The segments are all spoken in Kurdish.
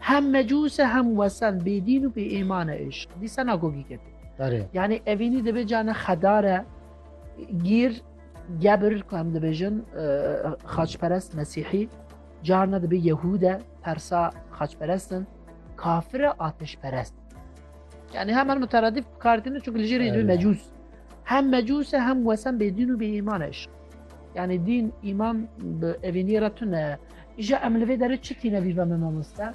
Hem mecûs e hem wesen bêdîn û bêêman e îşq. Dîsa nago gîket. Yani evînî dibe cane xedar e gîr gebir ku em dibêjin e, xaçperest mesîhî carna dibe yehûd e persa xaçperestin kafir e atişperest. Yani hemen muteradîf bikaridin çünkü li jêrê dû mecûs. Hem mecûs e hem wesen bêdîn û bêîman e. Yani din, iman, evînî re tune Îja em li vê derê çi tîne bî be me mamoste?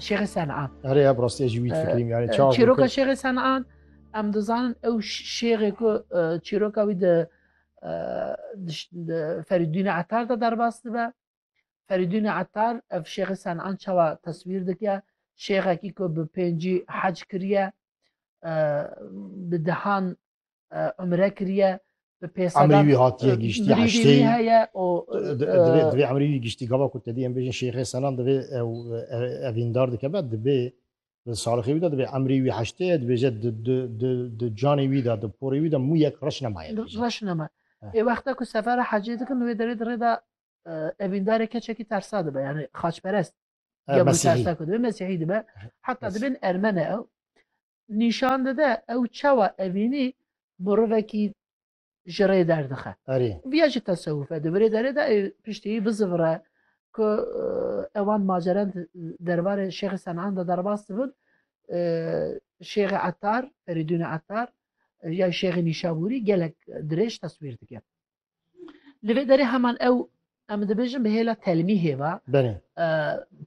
Şêxê Sen'an. Erê ya rastî jî wî fikrîm yani ee, çav. Çîroka Şêxê Sen'an em dizanin ew şêxê ku ee, çîroka wî di ee, Ferîdûnê Etar de derbas dibe. Ferîdûnê Etar ev Şêxê Sen'an çawa teswîr dike şêxekî ku bi pêncî hez kiriye ee, bi dehan umre kiriye bi pêsa Emrî wî hatiye giştî eştê heye û divê emrî wî giştî gava ku tedî em bêjin şêxê senan divê ew evîndar dike be dibê salixê wî de dibê emrî wî heştê ye dibêje di canê wî de di porê wî de mû yek reş nemaye reş nema ê wexta ku sefera hecê dikin wê derê di rê de evîndarê keçekî tersa dibe yani xaçperest ya tersa ku dibe mesîhî dibe heta dibin ermene ew Nîşan dide ew çawa evînî mirovekî ji rê derdixe. Viya jî tesewuf e. Di virê derê de ê piştî wî bizivire ku ewan maceren di derbarê Şêxê Senan de derbas dibin. Şêxê Etar, Ferîdûnê Etar ya Şêxê Nîşabûrî gelek dirêj teswîr dike. Li vê derê heman ew em dibêjin bi hêla telmîhê ve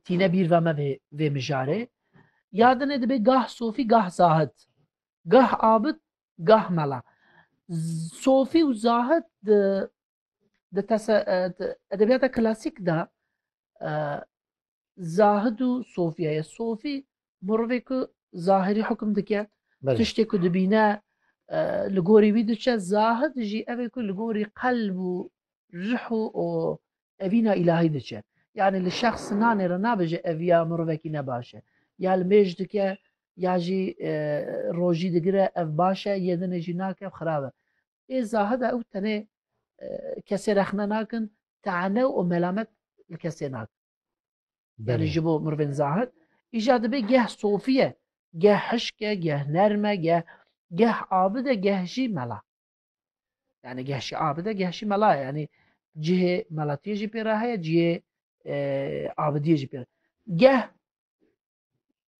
tîne bîr ve me vê mijarê ya dinê dibê gah sofî gah zahit gah abit gah mela sofî û zahit di di edebiyata klasîk de Zahid û Sofya ye. Sofî mirovê ku zahirî hukm dike, tiştê ku dibîne li gorî wî diçe, zahid jî evê ku li gorî qelb û rih û û evîna îlahî diçe. Yanî li şexs nanê re nabêje ev ya mirovekî ne baş e. Ya li mêj dike ya jî rojî digire ev baş e, yê dinê jî nake ev xirab e. Ê zahid e ew tenê kesê rexne nakin, tane û melamet li kesê nakin. Yani ji bo mirvên zahid îja dibê geh sofiye, geh hişke, geh nerme, geh geh abide, geh jî mela. Yani geh jî abide, geh jî mela yani cihê melatiye jî pê re heye, cihê abidiyê jî pê re. Geh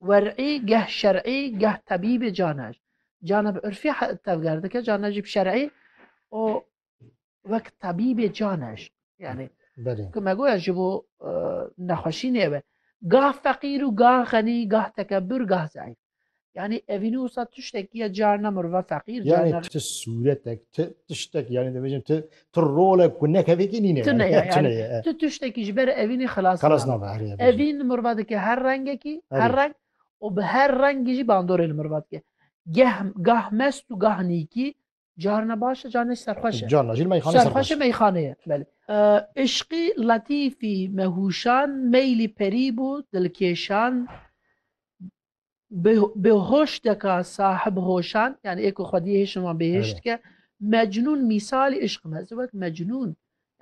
Wer'î geh şer'î geh tebîbê cane jî. Cane bi urfî tevger dike, cane jî bi şer'î û wek tebîbê cane jî. Yanî ku me goya ji bo nexweşî nêbe. Gah feqîr û gah xenî, gah tekebûr, gah zeîf. Yanî evînî wisa tiştekî ye carna mirove feqîr carna. Ti sûretek, ti tiştek yanî divêjim ti Tu role ku ne kevekî nîne Tu ne ye. Tu ne ye. Yani tu tiştekî ji ber evînê xilas nabî. Xilas nabî herî ye. Evîn li miriva dike her rengekî, her reng û bi her rengî jî bandorê li miriva dike. Geh gah mest û gah nîkî, carina baş e, carina jî serxweş e. Carina jî li meyxaneyê serxweş e. Serxweş e meyxaneyê ye. Belê. Îşqî letîfî me hûşand, meylî perî bû dilkêşand. Bêhoşteka sahib hoşan yanî ê ku xwediyê hêşin wan bêhêş dike. Mecnûn mîsalî îşq in. Ez ê wek mecnûn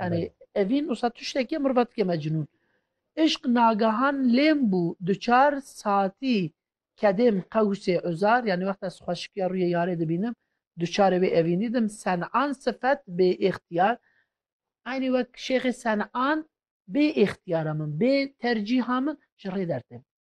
yanî evîn wisa tiştekî ye miriva dike mecnûn. Îşq nagehan lêm bû duçar satî kedêm qewsê uzar yanî wexta ez xweşikiya rûyê yarê dibînim duçarê wê evînî dim sen'an sifet bê îxtiyar aynî wek şêxê sen'an bê îxtiyara min bê tercîha min ji rê dertê min.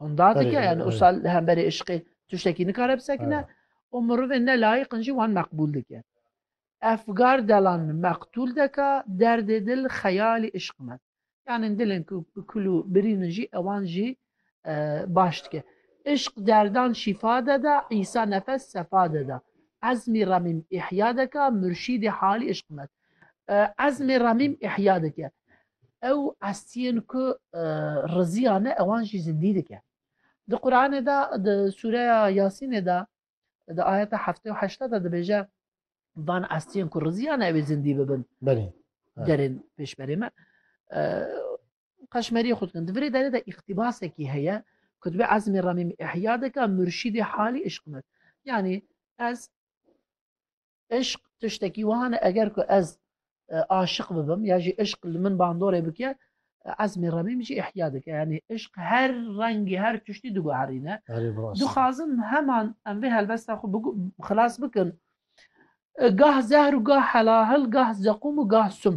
Honda dike yani o sal li hemberê eşqê tiştekî nikare bisekine û mirovên ne layiqin jî wan meqbûl dike. Efgar delan meqtûl deka derdê dil xeyalî eşq me. Yani dilên ku bi kul û birînin jî ewan jî baş dike. Eşq derdan şîfa deda, îsa nefes sefa deda. Ezmî remîm îhya deka, murşîdê halî eşq me. Ezmê remîm îhya dike. ew estiyên ku riziya ne ewan jî zindî dike. Di Quranê de di sûreya Yasînê de di ayeta heftê û heşta de dibêje van estiyên ku riziya ne ewê zindî bibin derên pêşberê me qeşmeriyê xwe dikin. Di virê derê de îxtîbasekî heye ku dibê ezmê remîm ihya dike murşîdê halî îşq me. Yanî ez Eşq tiştekî wiha ne eger ku ez aşiq bibim ya jî eşq li min bandorê bike ezmê remî min jî ihya dike yanî eşq her rengî her tiştî diguherîne dixwazin heman em vê helbesta xwe xilas bikin gah zehr û gah helahil gah zeqûm û gah sum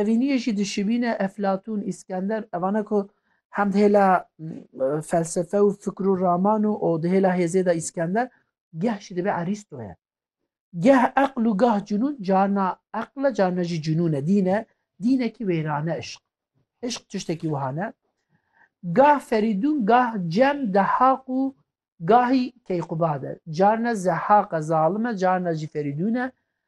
Evîniyê jî dişibîne Eflatûn, Îskender, evan e ku hem di hêla felsefe û fikr û raman û û di hêla hêzê de Îskender, geh jî dibe Erîsto ye. Geh eql û gah cunûn, carna eql e, carna jî cunûn e. Dîn e, dînekî wêrane îşq. Îşq tiştekî wiha ne. Gah Ferîdûn, gah Cem, Dehaq û gahî Keyqubad e. Carna Zehaq e, zalim e, carna jî Ferîdûn e,